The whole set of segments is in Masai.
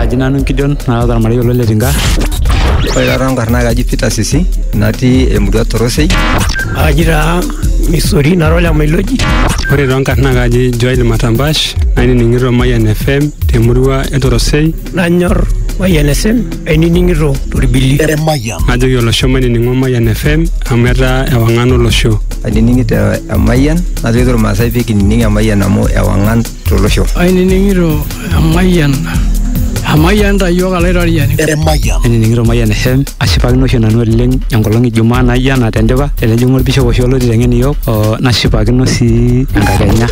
Aji nanu Gideon nara ormarei olo le Tinga. Ore taata nkarna ai kaji Peter Sisi natii emurua Torosei. Aji taa Misori nara ole Mailoji. Ore too nkarna ai kaji Joel Matambash nainining'ito Mayian FM temurua e Torosei. Nanyor Mayian FM ainining'ito torbili. Najoki olosho mainining'o Mayian FM amu etaa ewang'an olosho. Ainining'ito Emayian najoki irmaasai pee kinining Emayian amu ewang'an tolosho. Ainining'ito emayian emayian ta iyiook alaitoriani. Emayian. Ainining'ito Mayian FM ashipakino oshi nanu oleng enkolong ijumaa naijo ena tendipa tenejing'u olbishop oshi olotii teng'en iyiook oo nashipakino sii enkakenya.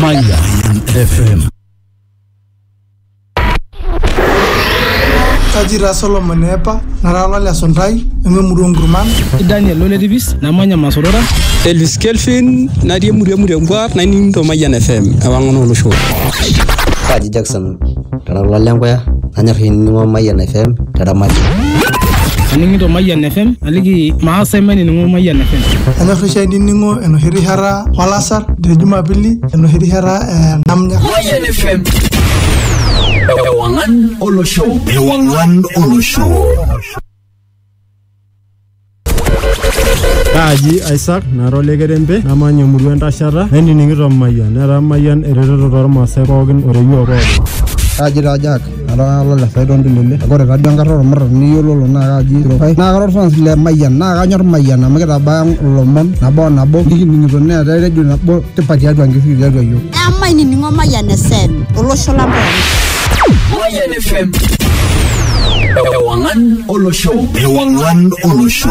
Mayian FM. Kaji taa Solomon eepa, nara olole esuntai, nanu emurua oo nkurman. Kaji taa Daniel ole tipis, namanya Masorora. Elvis Kelvin, natii emurua e Murengwa, naining'ito Mayian FM, ewang'an oo loshon. Kaji Jackson, kara olole Enkoya, nanyor ainining'o Mayian FM te Ramati. Aning'ito Mayian FM, aliki maas ai mainining'o Mayian FM. Anyor oshi ainining'o enoshi rishata olasar te Jumapili, enoshi rishata namna Ewangan Olo Show. Ewangan Olo Show. kaaji isaac nara olekerempe namanya emurua entashata nainining'ito mayian netaa mayian eretoto toormaasai pookin oreyio pookin Kaji taa Jack Atalala le Saidon Ndulele. Ore taduo enkata olmurran niyiololo naa kaji Rokai. Naa kara olfans le Mayian naa kanyor Mayian amu kitabaya ilomon nabo o nabo nikining'ito neetae redio nabo tipat tiatua Nkisii tiatua iyiook. Emainining'o Mayian FM olosho lang pooki. Mayian FM. Ewang'an olosho. Ewang'an olosho.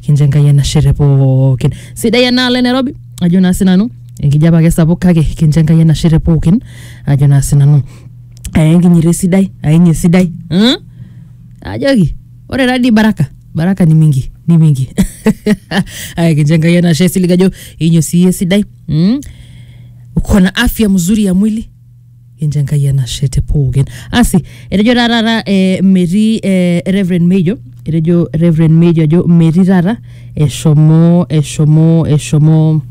kincho enkai enashe te pookin sidai enaalo e nairobi ajo naa sinanu enkijape ake sapuk kake kincho enkai enashe te pookin ajo naa sinanu aya enkinyito esidai aenye esidai mm? ajoki ore tadii baraka baraka ni mingi ni mingi aya kincho enkai enashe silig ajo inyo sii esidai mm? uko na afya mzuri ya mwili Kincho Enkai enashe te pookin. Asi, etejo taa taata eh, metii eh, Reverend Mejo, etejo Reverend Mejo ajo metii taata eshomo eshomo eshomo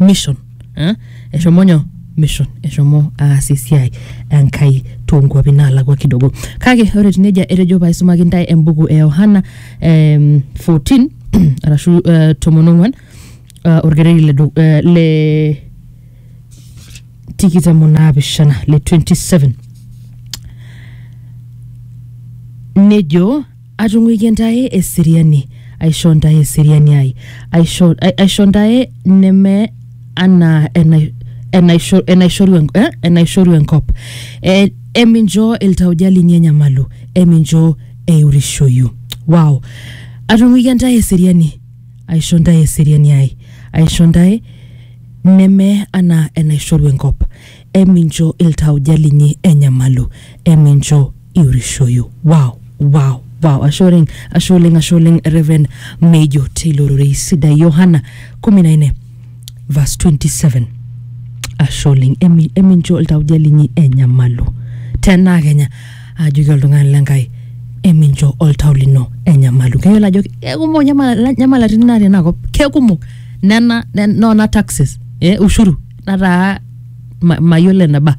mission eh? eshomo nyoo mission eshomo aas esiai enkai toonkuapi naalakua kidogo kake ore etiu nejia etejo paaisumaki ntae embuku e Yohana em, 14 arashu eh, tomon ong'uan eh, orkereri le du- eh, le tikitam onaapishana le 27 nejo atung'uikie ntae eseriani aisho ntae eseriani ai aisho, ai- aisho ntae neme anaa enai- enaisho- enaishoru en- eh, enaishoru enkop Eh, emincho iltauja linyi enyamalu emincho eiurishoyu wow atung'uikie ntae eseriani aisho ntae eseriani ai aisho ntae Neme anaa enaishoru enkop. Emincho iltauja linyi enyamalu, emincho iurishoyu. Wow! Wow! Wow! Ashe oleng, ashe oleng, ashe oleng Rev. Meijo teilo rorei sidai. Yohana kumi na nne verse 27. Ashe oleng, emi- emincho iltauja linyi enyamalu. Tenaa kenya ajoki oltung'ani le Nkai emincho oltau lino enyamalu. Keyiolo ajo kekumok nyamala- nyamalatin natii ena kop, kekumok. nena ne- nona taxes eh, ushuru nataa ma- mayiolo eneba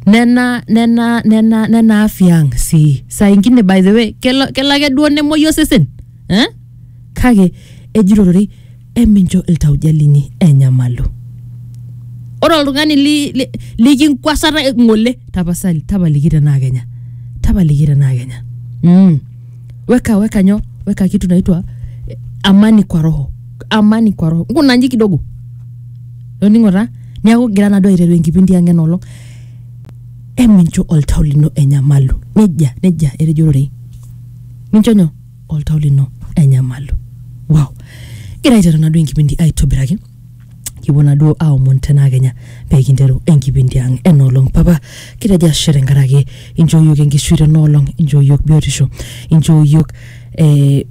nena nena nena nena afya ang sii saa ingine by the way kelo, kelo ake duo nemuoyu osesen eh? kake ejito ororei emincho iltauja linyi enyamalu ore oltung'ani li- li- likinkwasata ng'ole tapasali tapaliki tenaa kenya tapaliki tenaa kenya mm. weka weka nyo weka kitu naitwa eh, amani kwa roho amani kwa roho nguna nji kidogo loning'ora niaku gira nado aiteru enkipindi ang enolong emincho oltau lino enyamalu nejia nejia etejo ororei mincho nyo oltau lino enyamalu wow gira aiteru nado enkipindi aitobiraki kipuo naduo aomon tenaa kenya pee kinteru enkipindi ang enoolong papa kitejo ashe tenkaraki inchoo yiok enkishui tenoolong inchoo yiok biotisho inchoo yiok eh,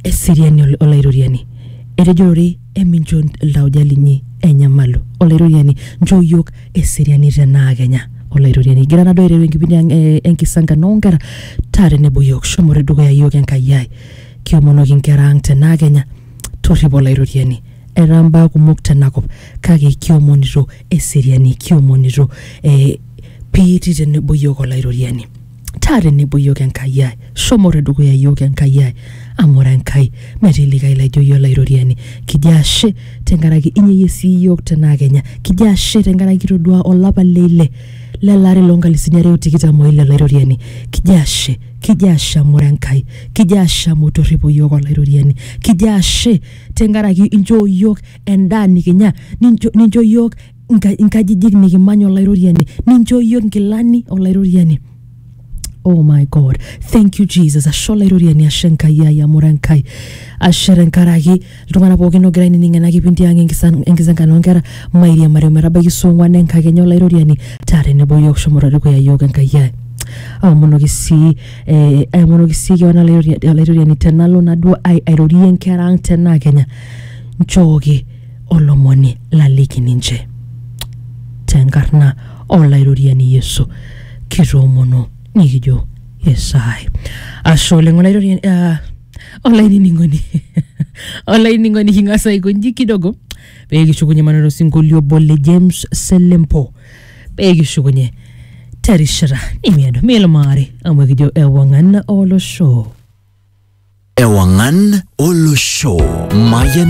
eseriani ol- olaitoriani etejorori emincho iltauja linyi enyamalu olaitoriani nchoo yiok eseriani tenaa kenya olaitoriani igira naduo aiteru enkipindi ang eh, enkisankano onkera taa tenebo yiok shomo te dukuya yiok enkai ai kiomonoki inkera ang tenaa kenya Torripo Olaitoriani, etaa mbaa kumok tena kop, kake kiomonito eseriani, kiomonito eh, piitii tenebo iyiook Olaitoriani. Taa tenebo iyiook Enkai ai, shomo te dukuya iyiook Enkai ai, amu ore Enkai metii likae laijo iyie Olaitoriani. Kijo ashe tenkaraki inyeyie sii iyiook tenaa kenya. Kijo ashe tenkaraki kitoduaa olapa le ile le lari loo nkalisuni are o tikitam o ile Olaitoriani. Kijo ashe. kijo asham ore Enkai, kijo ashamu torripo iyiook Olairoriani, kijo ashe tenkaraki inchoo iyiook endaa nikinya, nincho, nincho iyiook inka- inkajijik nikimany Olairoriani, ninchoo iyiook inkilani Olairoriani. Oh my God, thank you Jesus. Ashe Olairoriani, ashe Enkai ai amu ira Enkai. Ashe tenkaraki iltung'ana pookin ogira ainining ena kipindi ang enkisan- enkisenkano onkera mairiamari ometabaiki saa ong'uan enkakenya olairoriani taa tenebo yiok shomoto dukuya yiok enkai ai aomonoki sii eh, aomonoki sii kewan olairori- olairoriani tenalo naduo ai- airorie inkera ang tenaa kenya nchooki olomoni laliki ninche tenkarna olairoriani yesu kitoomono nikijo esaai ashe oleng olairoriani ah, olainining'oni olainining'oni king'as aikonji kidogo pee kishukunye maneno osinkolio obo le James Selempo pee kishukunye terishata nimiado milumaari amu ekijo ewang'an olosho. Ewangan Olosho Mayan